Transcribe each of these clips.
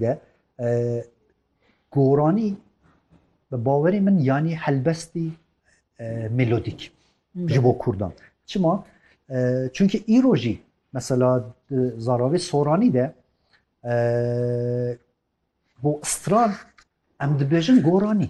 De goranî bi bawerê min yanî helbestî melodîk ji bo Kurdan. Çima? Çunkî îro jî mesela zararê soranî de bo stran em dibêjin goranî.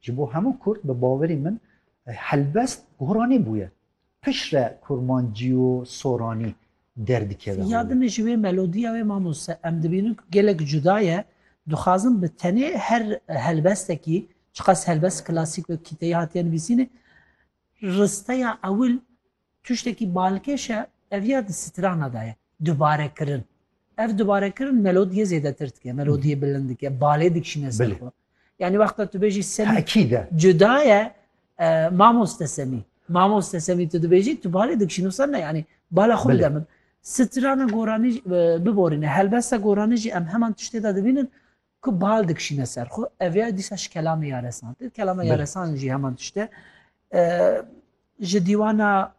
Ji bo hemû kurd bi bawerî min helbest goranî bûye. Piştre kurmancî û soranî derdikeve holê. Ya din ji wê melodîya wê mamoste em dibînin ku gelek cuda ye. Dixwazim bi tenê her helbestekî, çiqas helbest klasîk wek kîteyî hatiye nivîsînê, risteya ewil Tiştekî balkêş e, ev ya di strana de ye, dubarekirin. Ev dubarekirin melodiyê zêdetir dike, melodiyê bilind dike, balê dikişîne ser xwe. Yanî wexta tu bêjî Semî cuda ye, mamoste Semî, mamoste Semî tu dibêjî, tu balê dikişînî wisa ne yanî bala xwe bide min. Strana goranî biborîne, helbesta goranî jî em heman tiştê de dibînin, Ku bal dikişîne ser xwe ev ya dîsa ji kelamê ya resan tê. Kelama ya resan jî heman tişt e. Ji dîwana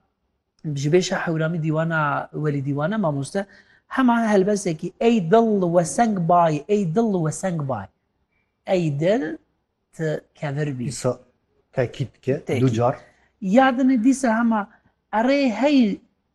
ji bêşa hewramî dîwana welî dîwana mamoste hema helbesekî ey dil we seng bay ey dil we seng bay ey dil ti kevir bî tekît ke du car yadinê dîsa hema erê hey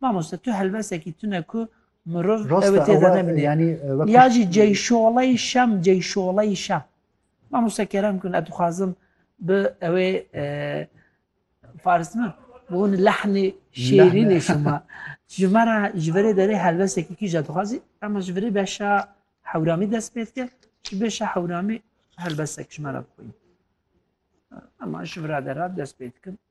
Mamoste tu helbesekî tune ku mirov ew ê têde nebîne. Ya jî ceyşoley şem ceyşoley şem. Mamoste kerem kun ez dixwazim bi ew ê faris me bi hûn lehnê şêrînê şima. Ji me re ji verê derê helbesekî kî je dixwazî em ji verê beşa hewramî dest pê dike ji beşa hewramî helbesek ji me re bixwîn. Em ji vira de re dest pê dikin.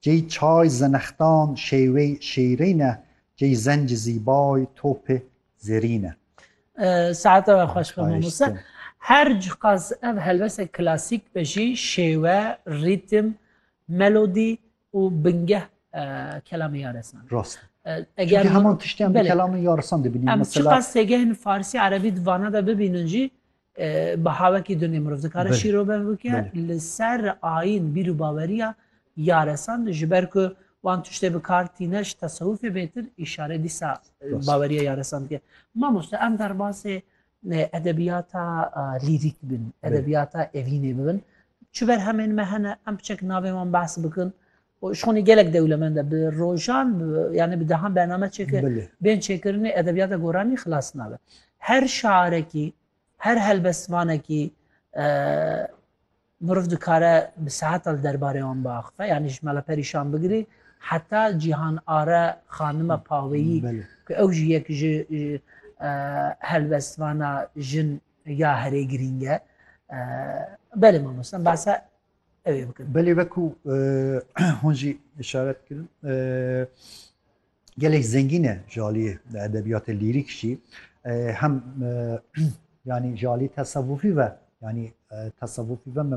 Cey çay zenextan şêwey şêrîne cey zenc zîbay topê zerîne. Saete we xweş be mamoste. Her cixaz ev helbese klasîk be jî şêwe, rîtim, melodî û bingeh kelamê yaresan. Rast. Eger heman tiştiyan bi kelamê yaresan dibînin. Em çiqas têgehên farsî, erebî di vana de bibînin jî Baha wekî dunê mirov dikare şîrovev bike li ser ayîn bîr û baweriya yaresan ji ber ku wan tiştê bi kar tîne ji tesewifê bêtir îşare dîsa baweriya yaresan dike. Mamoste em derbasê edebiyata lîrîk bin, edebiyata evînê bibin. Çi berhemên me hene em biçek navê wan behs bikin Şonê gelek dewlemend e. Bi rojan yanî bi dehan bername çêkir. Bên çêkirinê edebiyata goranî xilas nabe. Her şarekî, her helbestvanekî miriv dikare bi seheta li derbarê wan biaxife. Yanî ji Mela Perîşan bigirî heta Cîhan Are xanima paweyî ku ew jî yek ji helbestvana jin ya herê girîng e. Belê mamoste, em behsa ew ê bikin. Belê wekû hûn jî işaret kirin gelek zengîn e ji aliyê di edebiyatê lîrîk jî hem yanî ji aliyê tesewufî ve yanî tesewufî ve me